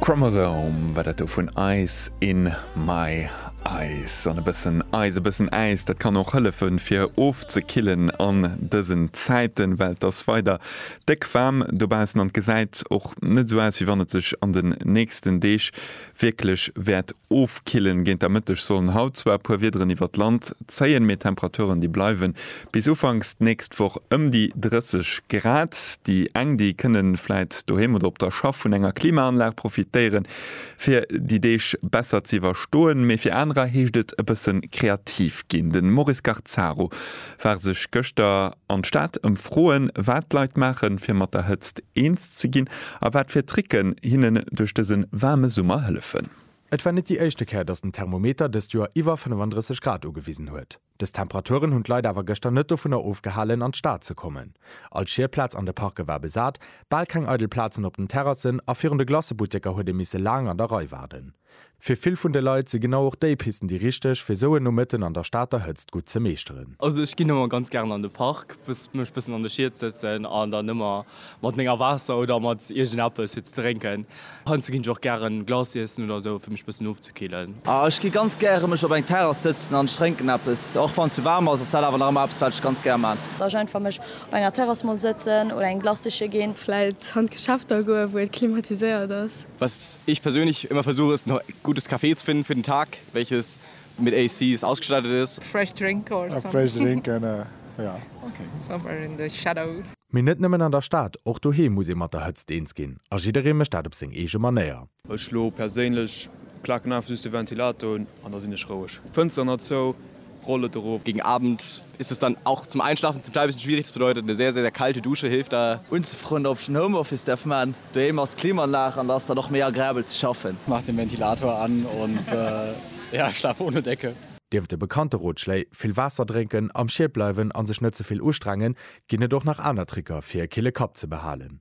Chromosome war dat do vun Ice in my Eis an e bëssen Eis, e bëssen Äis, dat kann och hëllefe fir ofzekillen an dësen Zäiten, well et ass weider déck waarm dobaussen an et gesäit och net esou aus, wéi wann et sech an den nächsten Deeg Wierklech wäert ofkillen. Géint der Mëtteg sollen haut zwar e puer Wiederen iwwert d'Land zéien, mee d'Temperaturen, déi bleiwe bis ufanks d'nächst Woch ëm déi 30 Grad. Déi eng, déi kënne vläit doheem oder op der Schaff vun enger Klimaanlag profitéieren, fir déi Deeg besser ze iwwerstoen, mee fir anerer heescht et e bësse kreativ ginn. De Maurice Garzaro war sech gëschter An d'Stad ëmfroen, wat d'Leit maachen, fir mat der Hëtzt eens ze ginn a wat fir Tricken hinnen duerch dëse waarme Summer hëllefen. Et war net déi éischte Kéier, datt den Thermometer dëst Joer iwwer 35 Grad ugewisen huet. Dës Temperaturen hunn d'Leit awer gëschter net dovunner ofgehalen, an d'Stad ze kommen. All Schierplaz an de Parke war besat, bal keng eidel Plazen op den Terrassen a virun de Glacebutteker huet ee misse laang an der Rei waarden. Fir vill vun de Leit si genau och déi Pisten déi richteg, fir sou en Nomëtten an der Stater Hëtzt gutt ze meeschteren. Also ech ginn ëmmer ganz gären an de Park, mech bëssen an de Schied sëtzen an dann ëmmer mat menger Waasser oder mat iergendeppes fir ze drénken. Heiansdo ginn ech och gären Glace iessen oder sou, fir mech bëssen ofzekillen. Ah ech gi ganz gäre mech op eng Terrass sëtzen an ech drénken eppes, och wann et sou waarm ass, ass dat awer nach ëmmer eppes wat ech ganz gär maan. Dass ech einfach mech op enger Terrass mol sëtzen oder eng Glacëche ginn. Vläit an d'Geschäfter goen, wou et klimatiséiert ass. Was ich persönlich immer versuche ist noch gutes Café zu finden für den Tag welches mit ACs ausgestattet ist. Fresh drink or somewhere in the shadow. Mee net nëmmen an der Stad, och doheem muss ee mat der Hëtzt eens ginn a jidderee mécht dat op seng eege Manéier. Ech elo perséinlech klaken einfach just de Ventilator un an da sinn ech roueg. Fënster nach zou, Rolle dorof. Gegen Abend ist es dann auch zum Einschlafen zum Teil bisschen schwierig, das bedeutet eine sehr, sehr, sehr kalte Dusche hilft da. Unzefrënn op ech den Homeoffice därf maan. Doheem ass d'Klimaanlag an da ass dann och méi agrabel ze schaffen. Mach den Ventilator an und ja schlaf ohne Decke. Nieft de bekannte Rotschléi, vill Waasser drénken, am Schied bleiwen an sech net ze vill ustrengen, ginn et och nach aner Tricker fir e kille Kapp ze behalen.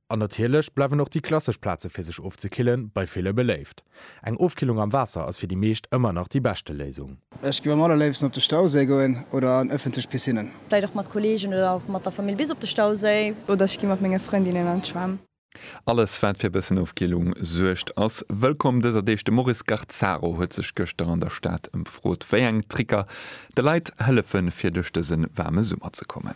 An natierlech bleiwen och déi klassesch Plaze fir sech ofzekillen bei ville beléift. Eng Ofkillung am Waasser ass fir déi meescht ëmmer nach déi beschte Léisung. Ech géif am allerléifsten op de Stauséi goen oder an ëffentlech Piscinnen. Vläit och mat Kolleegen oder mat der Famill bis op de Stauséi. Oder ech gi mat menge Frëndinnen an d'Schwämm. Alles wat fir e bëssen Ofkillung suergt ass wëllkomm dëser Deeg. De Maurice Garzaro huet sech gëschter an der Stad ëmfrot wéi eng Tricker de Leit hëllefe fir duerch dëse waarme Summer ze kommen.